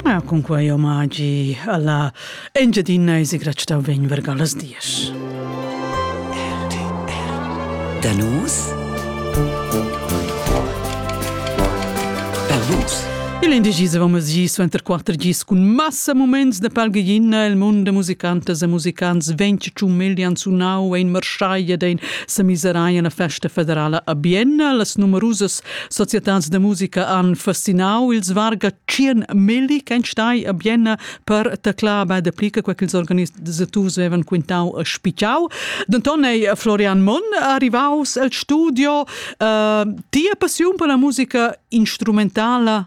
Ah, cun quei omagi alla Engiadina e sigratstau vegn verga las dies. Da nus? Per vus? Il indegis avamos gis suenter quatter gis cun massa moments de palgeina el mund de musicantas e musicants venti ciumilian sunau ein marschai ed ein semiseraia na festa federala a Bienna las numerusas Societads da musica han fascinau ils varga tschien milli ch'ein stai a Bienna per teclar be dapli che quei ch'ils organisaturs vevan quintau e spitgau. Denton ei Florian Monn arrivaus el studio. Uh, tia passiun per la musica instrumentala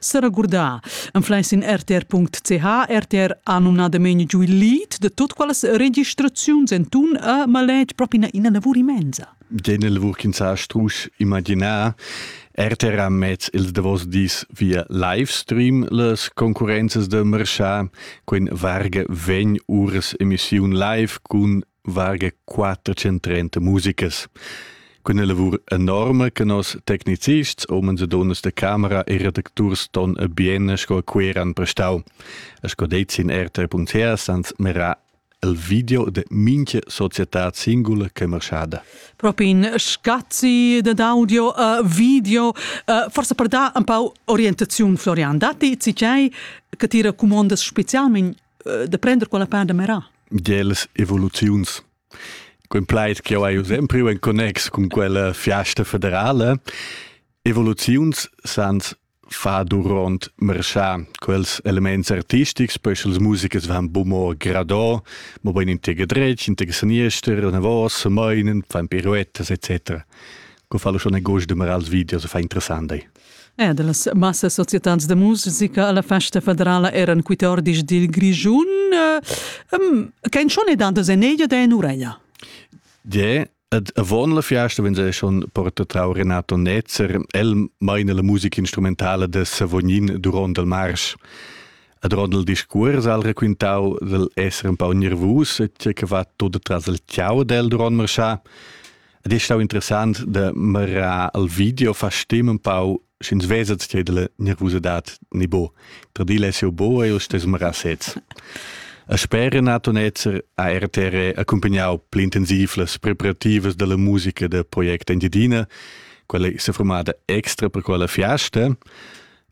Seragurdà. Ein fleis in rtr.ch, RTR ha numnadamain giu il lead de tot quelles registraziuns entun a maletg propi ina lavur immensa. Den lavur ch'ins ha strusch imaginar RTR ha mez ils davos dis via livestream las concurrenzas de marchà, quin varga vegn ures emissiun live cun varga 430 musicas. Cun la lavur enorme che nos tecnicists, omens e donnas de camera e redacturs ton e bien sco queran prestau. E sco deit sin rt.ch sans mera il video de minche società singula che marschada. Propi in scazzi de audio e uh, video, uh, forse per da un po' orientazione Florian, dati ci che ti racomandas specialmente de prender quella part de merar. Geles evoluziuns. Quin plaid che ho eu sempre in connex con quella fiasta federale, evoluziuns sans fa durant marchar quels elements artistics, poi sche les musiches van bumor gradò, mo ben in tega dretg, in tega saniester, una voce, meinen, fan piruettas, etc. Co fa lo schon agost de marar els videos, fa interessant dai. Er da las massas societans da musica a la festa federala eran quite ordis dil Grischun. Kein schon e dandos en eglia da en ureia. Ja, Ed avon la fiasta vegn ei schon portatrau Renato Netzer, el meina la musica instrumentala de Savognin duront il marsch. Ad rond il discuors al raquintau del esser un pau nervus e tge che va tot tras il ciao del duront marschar. Ed è stau interessant de mira al video fa stim un pau sch'ins vesa che della nervosidad ni bo. Per dire se bo e stes mira sez. A spera nato netzer a RTR accompagnau pli intensiv las preparativas della musica de Project Engiadina, quella è formata extra per quella fiasta,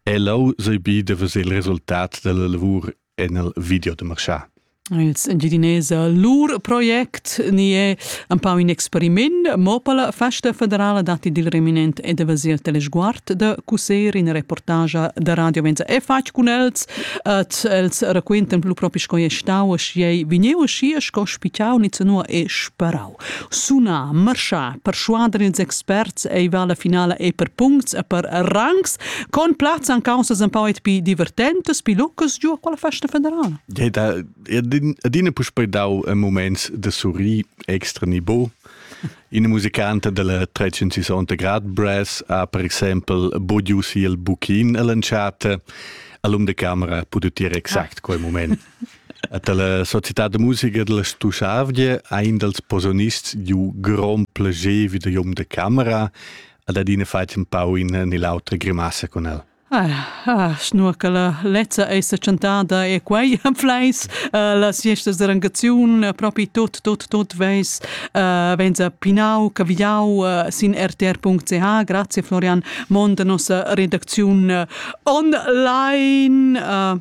e lau sei bi de vedere il resultat della lavor en il video da marchà. Ils Engiadinese lur project ni è un pau in experiment, mo per la festa federala datti dil reminent e davasi il telesguard da Cuser in reportage da Radio Venza è fatg cun els et els raquentan plus propi sco è stau e schi ei vegniu schi e sco spitau ni zanua e sparau. Suna, marschar, perschuader ils experts ei va la finala e per puncts e per rangs, con plazzan causas un pau pi divertentas, pi lucas giu a quella festa federala. Deta, adina puspei dau un moment de surri extra nibo. Ina musicanta della 360 grad brass ha per exempel bodiu si il buchin all'entschatta. All'um de camera ha potuto dire exact ah. quel moment. Dalla società da musica della Stuschavgia ha in dals posonists giu grond plager vi da Jom de Camera ad adina fat un pau in nell'autra grimassa con el. Ah, ah, schnur che la lezza è chantada e quei fleis uh, las siestas de rangaziun uh, propi tot tot tot veis uh, venza pinau cavigliau uh, sin rtr.ch grazie Florian Mond nossa redacziun uh, online uh,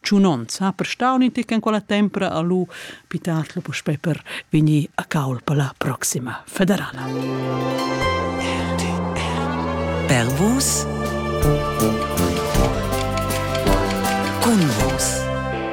tschunonz ha prestau in tic en quella tempra a lu pitatl puspei per vegnir a caul per la proxima federala. Per vus. Cun vus.